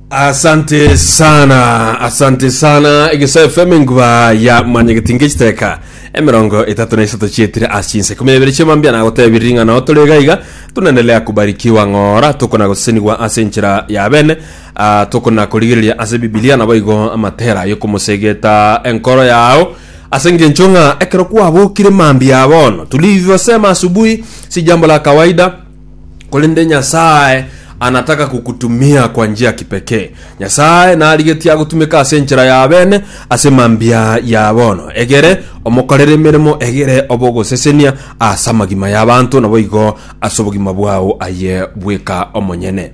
asante sana asante sana egesae fm enguba ya manyegetinga echiteka emerongo etatu na isato chietire ase chinse kumi na ibere chiamambia nagotebiri ring'ana ao tore iga iga tunaendelea kubarikiwa ng'ora tokona gosesenigwa ase enchera ya bene ah, tokona korigereria ase bibilia nabo igo amatera yokomosegeta enkoro yao ase engencho ng'a ekero kwabokire mambia bono tulivyosema asubuhi si jambo la kawaida Korende Nyasae anataka kukutumia kwa njia ya kipekee. Nyasae narigetie agotumeka ase enchera ya bene ase mambia ya bono, egere omokorere emeremo egere obogosesenia ase amagima y'abanto, naboigo ase obogima bwao aye bweka omonyene.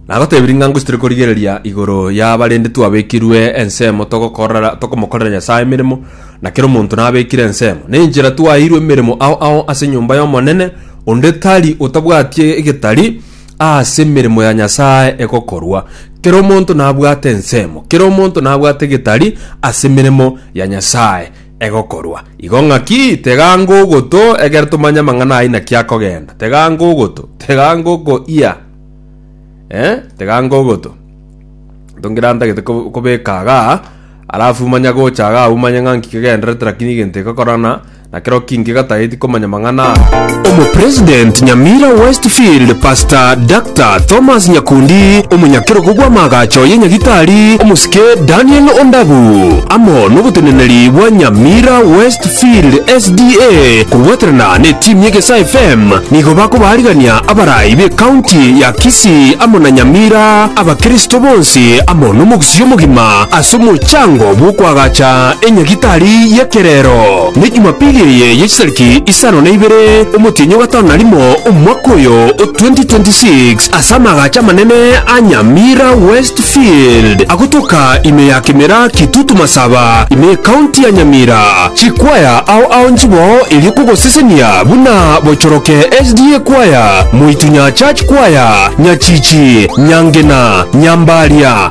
Nagoteebire ng'a ngoisitore korigereria igoro y'abarende twabekirwe ensemo togokorera tokomokorera Nyasae emeremo, na kera omonto nabekire ensemo. Nenchera twaeirwe emeremo ao ao ase enyomba y'Omonene, onde tari otabwati egetari ase emeremo ya Nyasae egokorwa. Kera omonto nabwate ensemo, kera omonto nabwate egetari ase emeremo ya Nyasae. egokorwa. Igo ng'aki tega ngogoto egere tomanye amang'ana aa inaki akogenda. Tega ngogoto, tega ngoko ia. Eh, tega ngogoto. Tongira ntagete ko- kobeka agaa, alafu manya gocha agaa umanye ng'a nki kegenderete rakini egento egokorana, na kero ki nki gatageti komanya amang'ana aya. Omopresident Nyamira Westfield Pastor Doctor Thomas Nyakundi, omonyakerogo bw'amaagacho ye Nyagitari omosike Daniel Ondabu, amo noboteneneri bwa Nyamira Westfield SDA korwaterana netimu y'Egesaa FM nigo bakobaarigania abarai b'ecounty ya Kisii amo na Nyamira abakristo bonsi amo nomogusii omogima ase omochango bw'okoagacha enyagitari y'ekerero. Ne Jumapili eye ye chitariki isano na ibere omotienyi o gatano na rimo omwaka oyo o 2026, ase amaagacho amanene a Nyamira Westfield agotoka ime ya Kimera Kitutu Masaba ime y'Ecounty ya Nyamira, chikwaya ao ao nchiboo erio kogosesenia buna Bochoroke SDA Kwaya, Moitunya Church Kwaya, Nyachichi, Nyangena, Nyambaria,